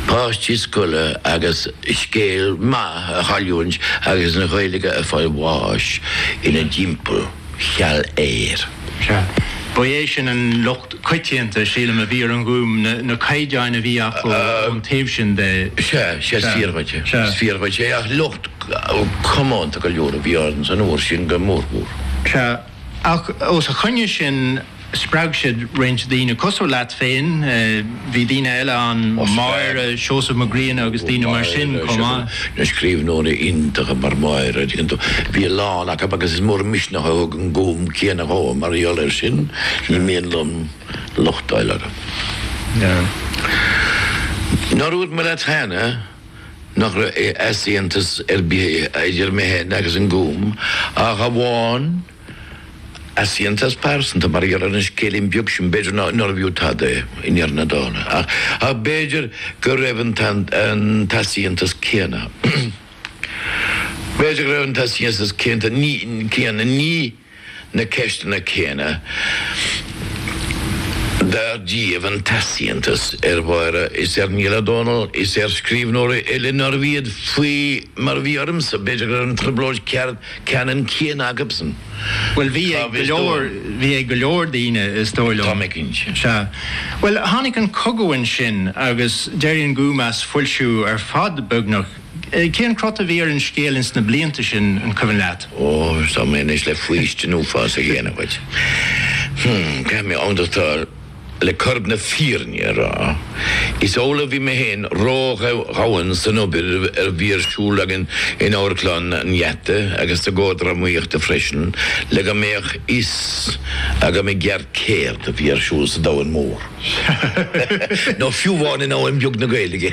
páistí scoile agus scéal maith a chailliúint agus an Ghaeilge ag fáil bháis ina dtimpeall, cheal aeir. Sea. Ba é sin an locht coitianta, sílim, a bhí ar an Ghúm, na caighdeáin a bhí acu ón taobh sin de. Sea, sea, is fíor dhuit é. Is fíor dhuit é ach locht comónta go leor a bhí ann san uair sin go mórmhór. Sea. Ach os a choinne sin, spreag siad roinnt daoine cosúil leat féin, bhí daoine eile ann, Máire, Seosamh Mac Grianna agus daoine mar sin chomh maith. Na scríbhneoirí iontacha mar Máire ar ndóigh, bhí a lán acu agus is mór an misneach a thug an Gúm céanna dhom mar gheall air sin, ní mian liom locht a fháil orthu. Nár dhúirt mé leat cheana. nach raibh easaontas ar bith idir mé féin agus an Gúm ach amháin easaontas pearsanta mar gheall ar an scéilín beag sin, b'fhéidir nárbh fhiú tada é i ndeireadh na dála ach b'fhéidir go raibh an t-easaontas céanna, b'fhéidir go raibh an t-easaontas céanna, ní. na ceisteanna céanna dar díobh an t-easaontas ar Mháire is ar Niall Ó Dónaill is ar scríbhneoirí eile nárbh iad, faoi mar a bhí ormsa, b'fhéidir go raibh an trioblóid ceannann céanna acusan. Bhuel, bhí ag go leor, bhí ag go leor daoine, is dóigh liom. Tá mé cinnte. Sea. Bhuel, tháinig an cogadh ansin agus d'éirigh an Gúm as foilsiú ar fad, beagnach, Cén crot a bhí ar an scéal ins na blianta sin, an cuimhin leat? Ó, tá mé anois le faoistin uafásach a dhéanamh dhuit. Hm, caithfidh mé amhdachtáil. Le corp na fírinne a rá, is amhlaidh a bhí mé féin ródhomhain san obair a bhí ar siúl againn in Amharclann an Gheata agus sa gComhar Drámaíochta freisin le go mbeadh fhios agam i gceart céard a bhí ar siúl sa domhan mór, nó fiú amháin i ndomhan beag na Gaeilge.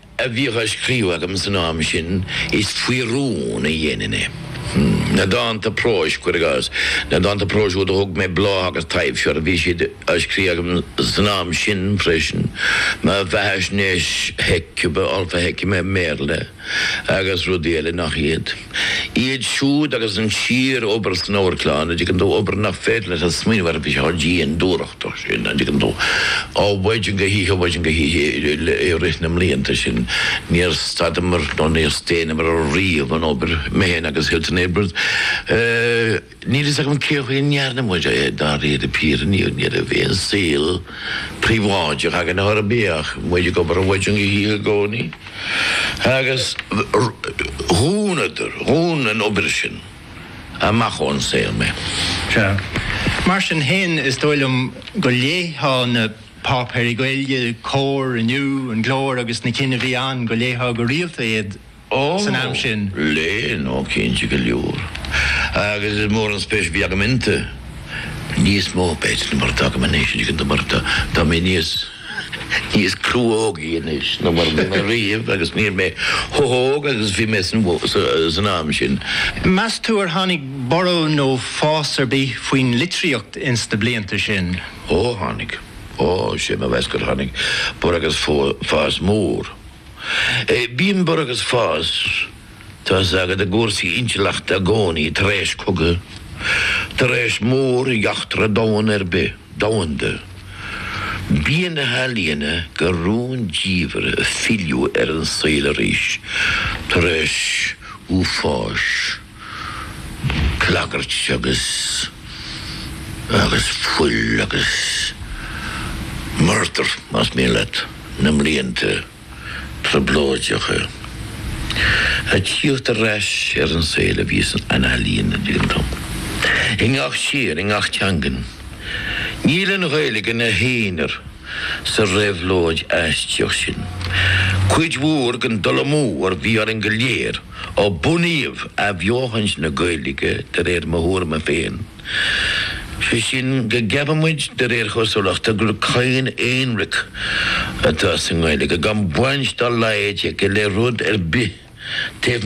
a bhíodh á scríobh agam san am sin, is faoi rún a dhéanainn é. Na dánta próis, cuir i gcás, na dánta próis úd a thug mé Bláth agus Taibhse orthu, bhí siad á scríobh agam san am sin freisin mo bheathaisnéis, Hecuba, All for Hecuba i mBéarla agus rudaí eile nach iad. Iad siúd agus an síorobair san Amharclann, an dtuigeann tú, obair nach féidir leat a smaoineamh ar bheith chomh dian dúthrachtach sin, an dtuigeann tú, ó mhaidin go hoíche, ó mhaidin go hoíche i rith na mblianta sin. Níor stadamar nó níor staonamar riamh ón obair, mé féin agus Hilton Edwards. Níl a fhios agam cé chaoi a ndearna muid é, dáiríre píre, ní raibh aon saol príobháideach againn óir bhíodh muid ag obair ó mhaidin go hoíche i gcónaí agus dhúnadar, dhún an obair sin amach ón saol mé. Sea. Mar sin féin, is dóigh liom go léifeá na páipéirí Gaeilge, Comhar, Inniu, An Glór agus na cinn a bhí ann, go léifeá go rialta iad Ó, léinn, ó cinnte go leor. Agus is mór an spéis a bhí agam iontu. Níos mó, b'fhéidir, mar atá agam anois, is cinnte, mar tá mé níos, níos cruógaí anois ná mar a bhí mé riamh agus níl mé chomh hóg agus a bhí mé san am sin. Meas tú ar tháinig borradh nó fás ar bith faoin litríocht ins na blianta sin? Ó, tháinig. Ó, sé mo mheas gur tháinig borradh agus fás mór. Bíonn borradh agus fás tá a fhios agat i gcúrsaí intleachta i gcónaí tar éis cogaidh, tar éis móreachtra domhan ar bith, domhanda. Bíonn na healaíona go rúndiamhair ag filleadh ar an saol arís tar éis uafáis. Clagairt agus agus fuil agus murdar, más mian leat, na mblianta trioblóideacha a tíocht ar ais ar an saol a bhí san ealaíon ag an am. I ngach tír, i ngach teangain. Níl an Ghaeilge ina haonar sa réabhlóid aistíoch sin. Cuid mhór den dul amú a bhí orainn go léir, Ó bunaíodh athbheochaint na Gaeilge, de réir mo thuairime féin, sé sin go gceapann muid de réir chosúlachta gur cadhan aonraic atá sa nGaeilge, gan baint dá laghad aici le rud ar bith taobh